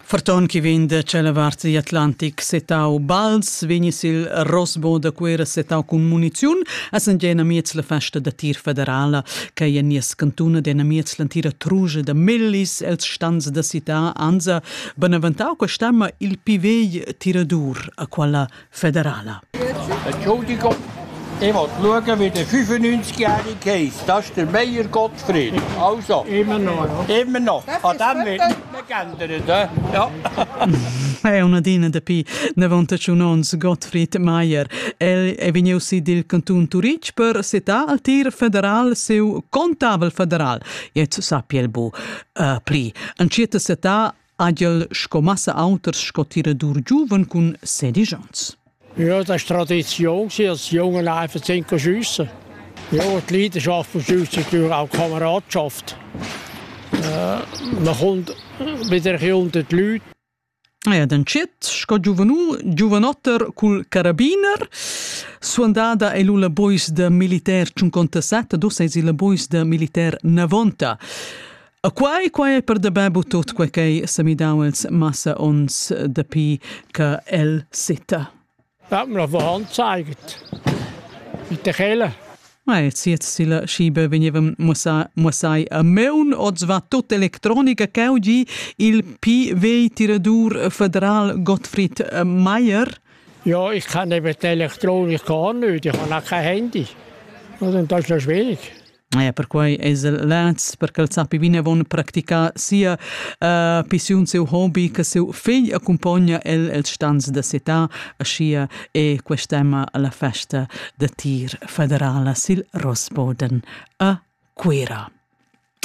Farton che vegn da tschella vart di Atlantic setau bals vegni sil Rosbo da Cuera setau cun muniziun essend jena miez la festa da tir federala che ei en nies cantun ed ena miez l'antira truge da millis els stans da cità anza benaventau questa ma il pivegl tiradur a quella federala. Entschuldigung, ich will schauen, wie der 95-jährige Case, das ist der Meier Gottfried. Also, immer noch. Ja. Immer noch. An dem wird nicht geändert. He? Ja. È una dina dapi 91 onns Gottfried Meier. El è vegniu sid dil canton Turitg per setar al tir federal seu contavel federal. Jetzt sappia el bu uh, pli. An circa setar Agl sco massa auters sco tiradur giuven cun sedisch ans. Ja, das ist Tradition, als Jungen einfach zu schiessen. Ja, die Leidenschaft von Schiessen ist natürlich auch Kameradschaft. Äh, man kommt wieder unter die Leute. Ja, den Chet, sco giovanu, giovanotter cul carabiner, suandada è la bois de militer 57, dos es il bois de militer 90. E quai, quai è per dabè bu tut quai ch'è sa midau els massa ons dapi che el sita. Hat mir auf der Hand gezeigt. Mit der Kelle. Ma e ziet sila schibe veniva mussai a meun oz va tut electronica cheu gi il PV tiradur federal Gottfried Mayer. Ja, ich kann eben die Elektronik gar nicht, ich habe auch kein Handy. Und das ist noch schwierig. Ja, perquai es el leds per ch'el sappi vinavon practicar sia uh, pissiun, seu hobi, che seu figl accumpogna el els stans da città, aschia è quest'emma la festa da tir federala sil Rossboden a Cuira.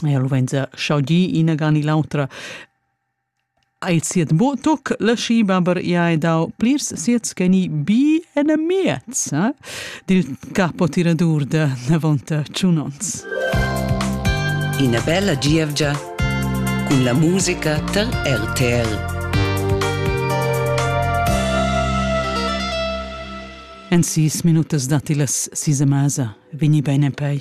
Ja, lo venza schaudi ina gan i l'autra Eir siat mo tuc la schima per i hai dau plirs siets che ni bi en miez eh, dil capotiradur da Navonta Tschunons. Ina bella gievgia cun la musica tar RTL. En sis minutas datti las sis a masa. Vini bene pei.